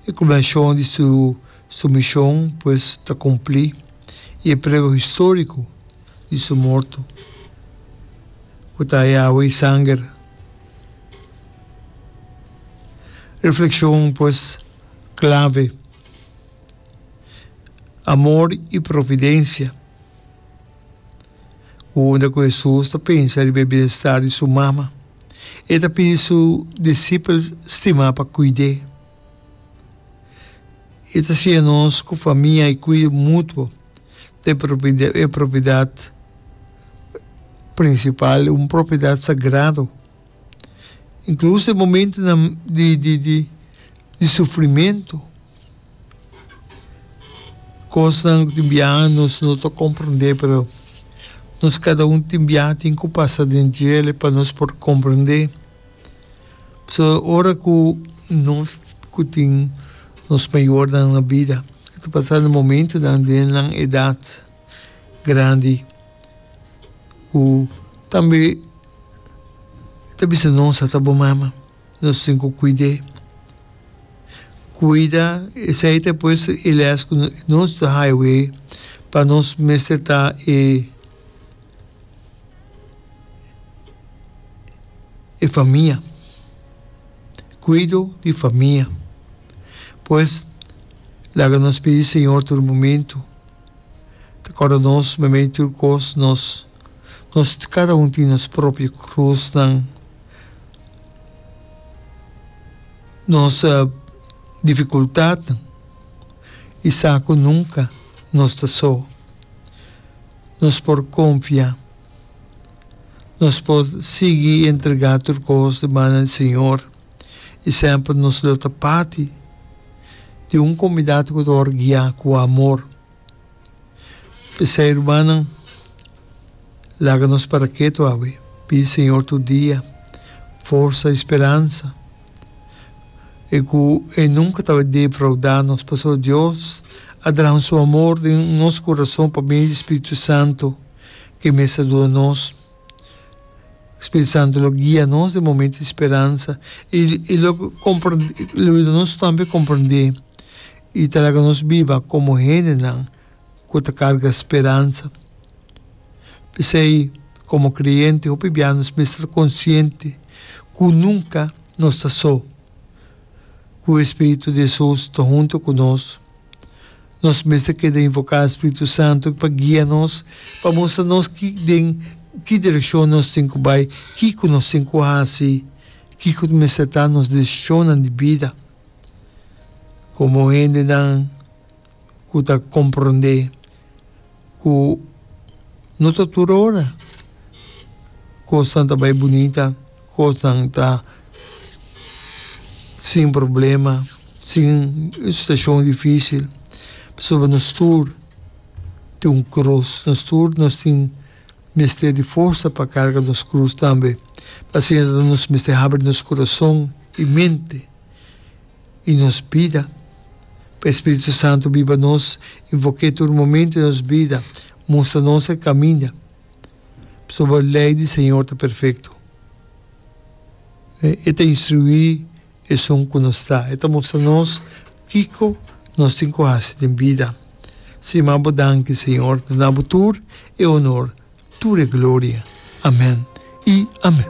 E culminacion di su su mision pues ta cumpli y e prueba historico di su morto cu ta e awa y sanger. Reflexion pues clave, Amor y providencia, Unda cu Hesus ta pensa riba e bienestar di su mama? E ta pidi su disipels stima pa kuid'é. E ta siña nos ku famia i kuido mutuo ta e propiedat prinsipal, un propiedat sagrado. Inkluso e momentunan di sufrimentu. Cosnan tin biaha nos no ta comprende pero nos cada un tin biaha tin cu pasa den djele pa nos por comprende. So ora cu nos cu tin nos mayornan na bida cu ta pasando momentonan den nan edad grandi cu tambe ta bisa nos ata bo mama. nos tin cu cuid'é. Cuida esei ta pues e les cu nos ta haya away pa nos mester ta e famia. Cuido di famia. Pues laga nos pidi Señor tur momento ta corda nos mamey tur cos nos. Nos cada un tin nos propio cruznan, nos dificultadnan y sa cu nunca nos ta so. Nos por confia, nos por sigui entrega tur cos di mana di Señor y semper nos lo ta parti di un comunidad cu ta wor guia cu amor. P'esei, rumannan, laga nos para ketu awe. Pidi Señor tur dia forsa i speransa, e ku E nunka ta defraudá nos, pasobra Dios a draha Su amor den nos kurason pa medio di Spiritu Santu, ke mes ta duda nos. Spiritu Santu lo guia nos den momentu di speransa i lo yuda nos tambe komprendé. I ta laga nos biba komo hendenan ku ta karga speransa. P'esei, komo kreyente, hopi bia nos mester ta konsiente ku nunka nos ta so, ku e spiritu di Hesus ta huntu ku nos. Nos mester keda invoká spiritu santu pa guia nos, pa mustra nos ki den ki direkshon nos tin ku bai, kiko nos tin ku hasi, kiko mester ta nos desishonnan di bida. Komo hendenan ku ta komprondé ku no ta tur ora kosnan ta bai bunita, kosnan ta sin problema, sin situashon difísil, pasobra nos tur tin un kros, nos tur tin. mester di forsa pa karga nos krus tambe. Pasobra nos mester habri nos kurason i mente i nos bida pa e spiritu santu biba nos i voké tur momentu di nos bida mustra nos e kaminda. Pasobra lei di Señor ta perfekto. E ta instruí. Esun ku nos ta. E ta mustra nos kiko nos tin ku hasi den bida. Siman bo danki, Señor. Nos na bo tur e onor, tur e gloria. Amen i amen.